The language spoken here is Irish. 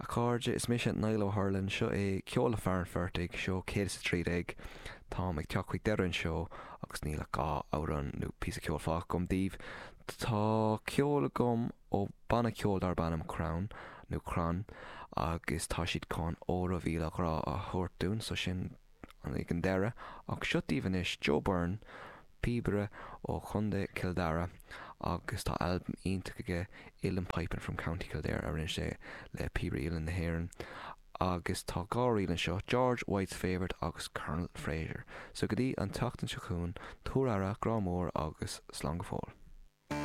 A chairde, is mise Niall Ó hArlainn, seo é Ceol le Fear an Phortaigh, Seó 113. Táim ag teacht chuig deireadh an seó agus níl ach dhá amhrán nó píosa ceoil fágtha agam daoibh. Tá ceol agam ó banna ceoil darb ainm Crann, nó Crann, agus tá siad chun Óró Mhíle Grá a thabhairt dúinn, so sin. An ag an deireadh, ach seo daoibh anois Joe Byrne, píobaire ó Chontae Chill Dara agus tá albam iontach aige Uilleann Piping from County Kildare a rinne sé le Píobairí Uilleann na hÉireann agus tá dhá ríl anseo, George White's Favourite agus Colonel Fraser. So go dtí an tseachtain seo chugainn, tabhair aire, grá mór agus slán go fóill.